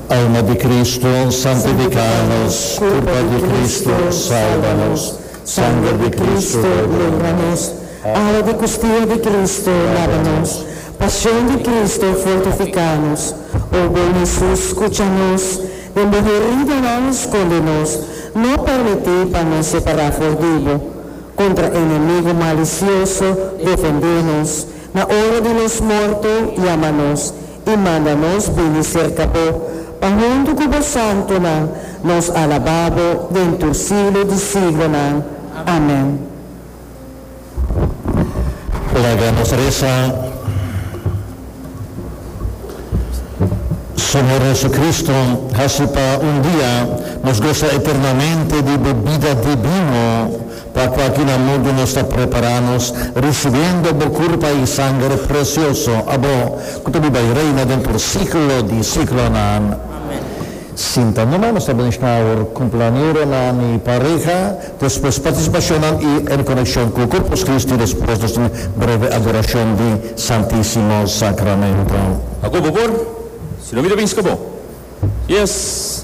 Alma di Cristo, santifica nos, Curpa di Cristo, salba nos, Sanger di Cristo, blenda nos, Awa di Custia di Cristo, laba nos, Pasion di Cristo, fortifica nos, O bon Jesus, scucha nos, Den Bo heridanan, sconde nos, No permiti pa nos separa for di Bo, Contra enemigo malicioso, defende nos, Na ora di nos morto, yama nos, i manda nos bini serka bo, pa huntu ku bo santunan nos alabá bo den tur siglo di siglonan. Amen. Laga nos resa. Señor Jesucristo, haci pa un dia nos gosa eternamente di bo bida divino. Pa kua ki na mundo nos ta prepará nos, risibiendo bo kurpa i sanger presioso, abo ku ta biba i reina den por siklo di siklonan. Amèn. Sinta numa, nos ta bensha awor kumpleañeronan i pareha, despues partisipashonnan i e konekshon ku Korpus Kristi, despues nos tin breve adorashon di Santísimo Sakramentu. Akoba por, si no mi ta binska bo. Yes.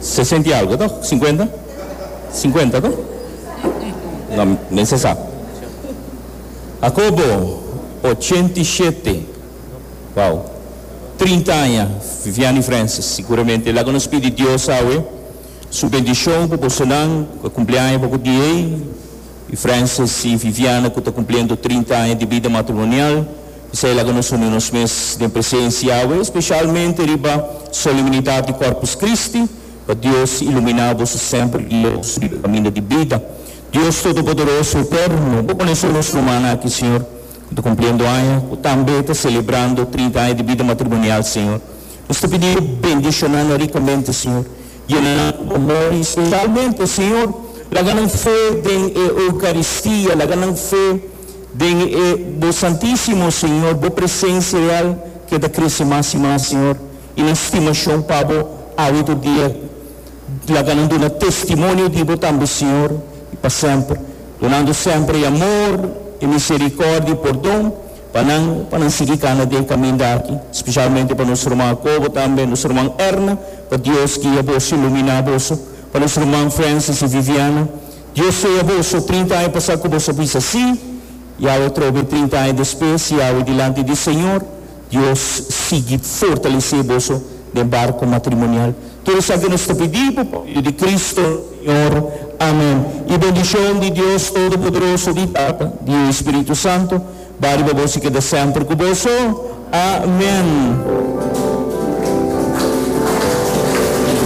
Sesenta i algo to? Sinkuenta? Sinkuenta to? No, men se sa. Jacobo, ochenta i shete. Wou. Trinta aña, Viviani Francis. Siguramente laga nos pidi Dios awe su bendishon pa bosonan ku a kumpli aña boku di ei, i Francis i Viviana ku ta kumpliendo trinta aña di bida matrimonial. Esei laga nos uni nos mes den presensia Yahweh, especialmente riba solemnidad di Corpus Christi, pa Dios ilumina bo su semper glorioso riba e caminda di bida. Dios Todopoderoso Eterno, bo pone sur nos rumannan aki, Señor, cu ta cumpliendo aña, cu tambe ta celebrando trinta aña di bida matrimonial, Señor. Nos ta pidi bo bendicionan nan ricamente, Señor. Yena nan cu bo amor y, specialmente, Señor, laga nan fe den e Eucaristia, laga nan fe, Den e bo Santísimo, Señor, bo presencia real keda crece mas y mas, Señor, y nan stimacion pa bo awe tur dia laga nan duna testimonio di bo tambe, Señor, y pa semper, dunando semper e amor, e misericordia y pordon pa nan, pa nan sigui cana den e caminda aki, specialmente pa nos ruman Jacobo tambe, nos ruman Erna, pa Dios guia boso y lumina boso, pa nos ruman Francis y Viviana, Yo sé boso, trinta aña pasá ku boso a bisa así, i awe trobe trinta aña despues, i awe dilanti di Señor, Dios sigui fortalesé boso den barku matrimonial. Tur esaki nos ta pidí bo, pa medio di Cristo nos Señor. Amén. E bendishon di Dios Todopoderoso, di Tata, di e Spiritu Santo, bai riba boso i keda semper ku boso. Amén.